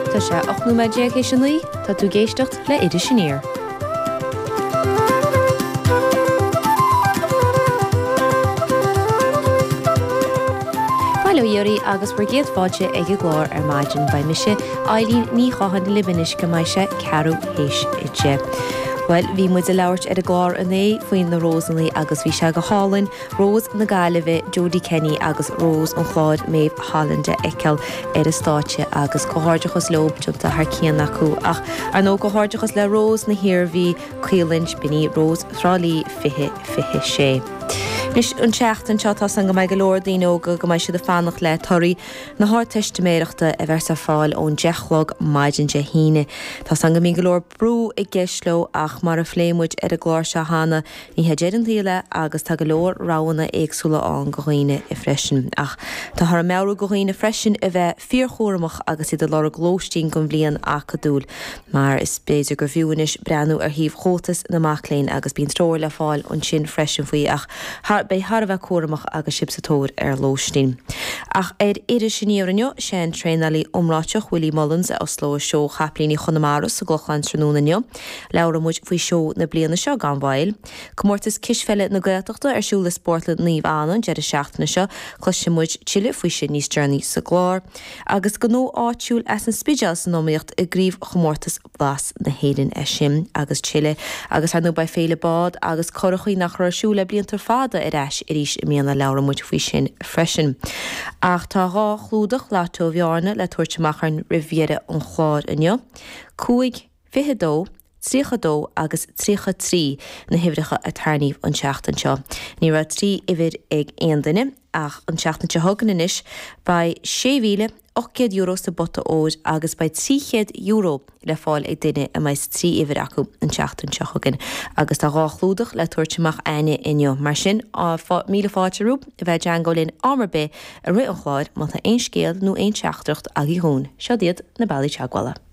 Tá sé 18 nóiméad théis 9, tá tú ag éisteacht le Iris Aniar. Bail ó Dhia oraibh agus bhur gcéad fáilte ag an gclár ar maidin. Beidh mise, Eileen Ní Chatháin, libh anois go mbeidh sé ceathrú théis deich. Bhuel, bhí muid ag labhairt ar an gclár inné faoi na Rósannaí agus bhí sé go hálainn. Rós na Gaillimhe Jody Kenny agus Rós an Chláir Méabh Holland a fheiceáil ar an stáitse agus comhghairdeachas leo, déanta thar cionn acu ach, ar ndóigh, comhghairdeachas le Rós na hIarmhí, Caolan Spinney, Rós Thrá Lí 2026. Anois, an tseachtain seo, tá a fhios a'inn go mbeidh go leor daoine óga, go mbeidh siad ag fanacht le torthaí na hArdteistiméireachta a bheas ar fáil ón 10 chlog maidin Dé hAoine. Tá a fhios a'inn go mbíonn go leor brú i gceist leo ach, mar a phléigh muid ar an gclár seo cheana, Ní hé deireadh an tsaoil é, agus tá go leor roghanna éagsúla ann go dhaoine freisin. Ach táthar ag meabhrú go dhaoine freisin a bheith fíorchúramach agus iad ag lorg lóistín don bhliain acadúil, mar is b'fhéidir gur bhfiú anois breathnú ar shuíomh Chomhaltas na Mac Léinn, agus bíonn treoir le fáil ansin freisin faoi, ach a bheith thar a bheith cúramach agus sibh sa tóir ar lóistín. Ach ar Iris Aniar inniu, sé an traenálaí iomráiteach Willie Mullins a osclóidh seó Chapaillíní Chonamara sa gClochán tráthnóna inniu. Labhróidh muid faoi seó na bliana seo gan mhoill. Comórtas cispheile na Gaeltachta ar siúl i Spórtlann Naomh Anna an deireadh seachtaine seo. Cloisfidh muid tuilleadh faoi sin níos deireanaí sa gclár. Agus gnó áitiúil as an Spidéal san iomaíocht i gcraobhchomórtas Blas na hÉireann. É sin agus tuilleadh. Agus ar ndóigh beidh Féile Bád agus Curachaí, nach raibh ar siúl le blianta fada, ar ais arís i mbliana. Labhróidh muid faoi sin freisin. Ach tá dhá chlúdach Lotto Bhearna le tabhairt amach againn roimh dheireadh an chláir inniu. Cúig. 22, 32 agus 33 na huimhreacha a tarrníodh an tseachtain seo. Ní raibh trí uimhir ag aon duine, ach an tseachtain seo chugainn anois beidh €6,800 sa bpota óir agus beidh €300 le fáil ag duine a mbeidh trí uimhir acu an tseachtain seo chugainn. Agus tá dhá chlúdach le tabhairt amach a'inne inniu, mar sin míle fáilte romhaibh a bheith i dteagmháil linn am ar bith i rith an chláir má tá aon scéal nó aon teachtaireacht agaí dhúinn, siod iad na bealaí teagmhála.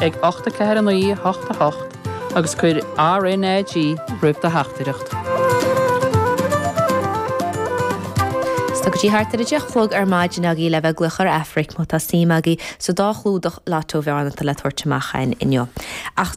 ag 84988 agus cuir RnaG roimh do theachtaireacht. Is tá go dtí thart ar a deich chlog ar maidin agaí le bheith ag glaoch ar Aifric má tá suim agaí sa dá chlúdach Lotto Bhearna atá le tabhairt amach againn inniu. Ach.